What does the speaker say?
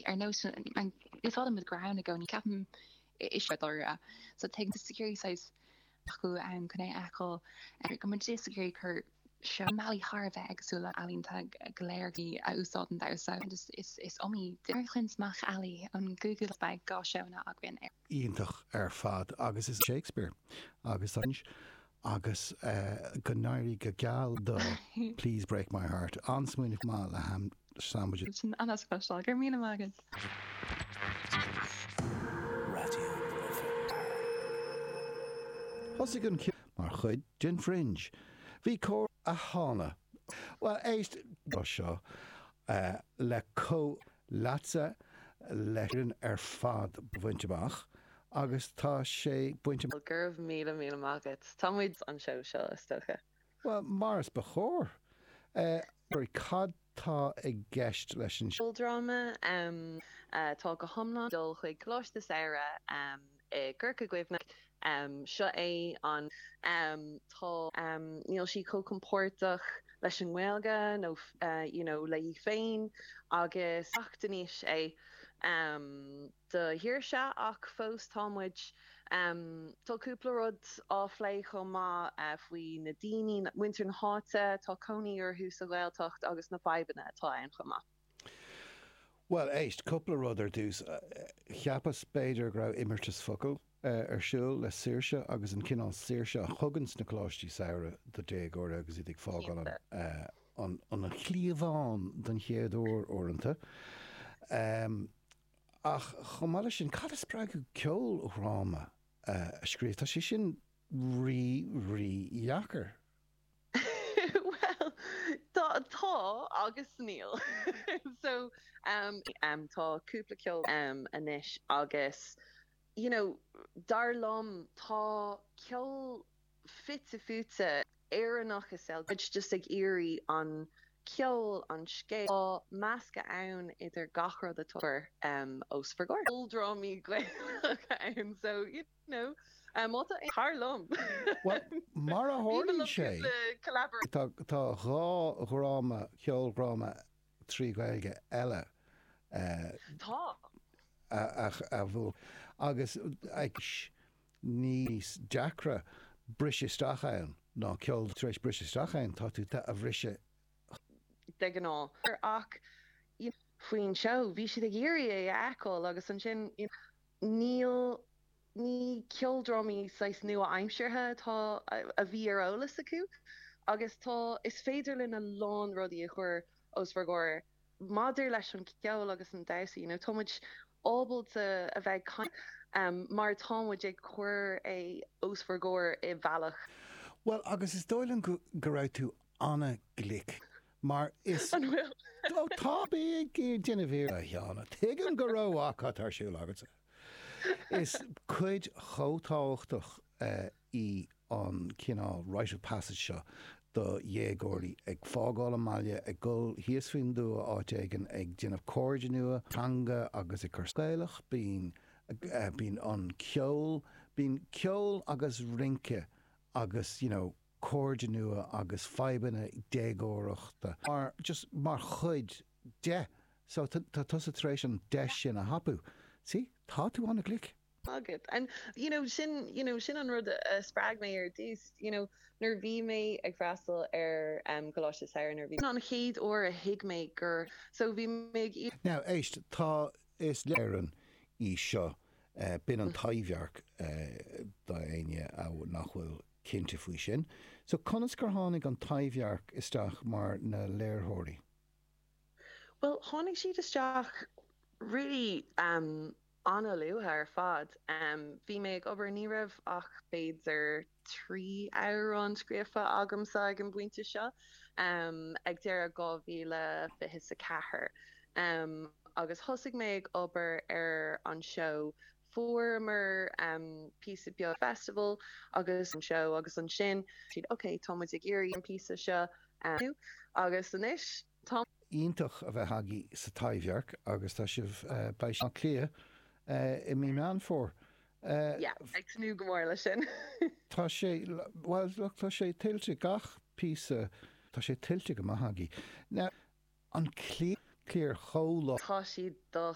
Ar nós úsáide, muid go raibh ann i gcónaí, ceapaim. Is ea, dáiríre. So tagann disciplíní éagsúla ann chun é a fheiceáil. Go mbeidh sé sa gcéilí cur seó. Bealaí thar a bheith éagsúla ealaíonta go léir a úsáideann damhsa. Is iomaí duine a chluinfidh mac ealaí ón gcúigiú lá, beidh dhá seónna againn ar. iontach ar fad agus is Shakespeare agus tá sin agus go n-éirí go geal do Please Break My Heart. An-smaoineamh maith le sandwich. Sin an-spéisiúil. Go raibh míle maith agat. Thosaigh an mar chuid den Fringe. Bhí cór a tháinig. Bhuel, éist, seo le comh. leatsa leis an ar fad a bhaint amach agus tá sé bainte amach. Go raibh míle míle maith agat. Tá muid. an seó seo is dócha. Bhuel, mar is ba chóir. Ach cad tá i gceist leis an. cheoldráma? Tá go hiomlán. dul chuig coláiste samhraidh. i gCorca Dhuibhne. Seo é an. Tá. Níl sí chomh compordach leis an nGaeilge nó you know léi féin agus teacht in aois é do Shaoirse ach fós tá muid Tá cúpla rud á bplé chomh maith faoi na daoine, muintir na háite a bhfuil cónaí orthu sa Ghaeltacht agus na fadhbanna atá ann chomh maith. Bhuel, éist, cúpla rud ar dtús. Cheapas, b'fhéidir, go raibh imeartas focal ar siúl le saoirse agus an cineál saoirse a thugann na coláistí samhraidh do dhéagóirí agus iad ag fágáil an chliabháin don chéad uair uaireanta. Ach chomh maith leis sin, cad é an spreagadh ceoldráma a scríobh? Tá sé sin rí, rí dheacair. Bhuel, tá, tá agus níl. So, em, tá cúpla ceol, em, anois agus, you know, dar liom tá ceol fite fuaite Éireannach is scéal, muid just ag iarraidh an ceol, an scéal, tá meascadh ann idir gach rud atá, em, os bhur gcomhair. Ceoldrámaí Gaelacha ann, so, you know. Nó, má tá aon, dar liom! Bhuel, mar a tharlaíonn sé, tá dhá dhráma, ceoldráma trí Ghaeilge eile a bhuachan agus níos deacra briseadh isteach ann ná ceol. Tar éis briseadh isteach ann, tá tú ag briseadh de ghnáth. Ach faoin seó, bhí siad ag iarraidh é a fheiceáil agus ansin. Ní, ní ceoldrámaí saghas nua-aimseartha atá, a bhí ar eolas acu. Agus tá, is féidir linn a lán rudaí a chur os bhur gcomhair maidir leis an gceol agus an damhsa, you know, tá muid ábalta bheith ag caint mar tá muid ag cur é os bhur gcomhair i bhealach. Bhuel, agus is dóigh liom go raibh tú an-ghlic. Mar is An bhfuil? Ó tá. Bí ag déanamh iarracht, a Sheáin. Tuigim go raibh cad atá ar siúl agatsa. Is cuid chomh tábhachtach í an cineál rite of passage seo do dhéagóirí, ag fágáil an mbaile, ag dul thíos faoin dtuath áit éigin, ag déanamh cairde nua, teanga agus an cultúr Gaelach. Bíonn bíonn an ceol bíonn ceol agus rince agus you know. Cairde nua agus fadhbanna déagóireachta mar, just mar chuid de. So, tá tusa tar éis an deis sin a thapú. See? Tá tú an-ghlic. agat. And you know, sin you know, sin an rud a spreag mé ar dtús. You know, nuair a bhí mé ag freastal ar em Coláiste Samhraidh, nuair a bhí an chéad uair a thuig mé gur so bhí mé ag Now, éist, tá is léir an í seo eh b'in an Taibhdhearc eh d'éinne nach bhfuil. cinnte faoi sin. So, conas gur tháinig an Taibhdhearc isteach mar na léirtheoirí? Bhuel, tháinig siad isteach really em an-luath ar fad. Em bhí mé ag obair ní raibh ach b'fhéidir trí amhrán scríofa agamsa ag an bpointe seo em ag deireadh dhá mhíle fiche 's a ceathair em agus thosaigh mé ag obair ar an seó fuaireamar píosa beag festival leis an seo agus ansin siad ok tá muid ag iarraidh an píosa seo agus anois tá. iontach a bheith agaibh sa Taibhdhearc agus tá sibh beidh sibh Cliath i mí Meán Fómhair yeah ag tnúth go mór leis sin. Tá sé bhuel look tá sé tuillte gach píosa tá sé tuillte go maith agaibh now an cliar chomh. Tá siad do.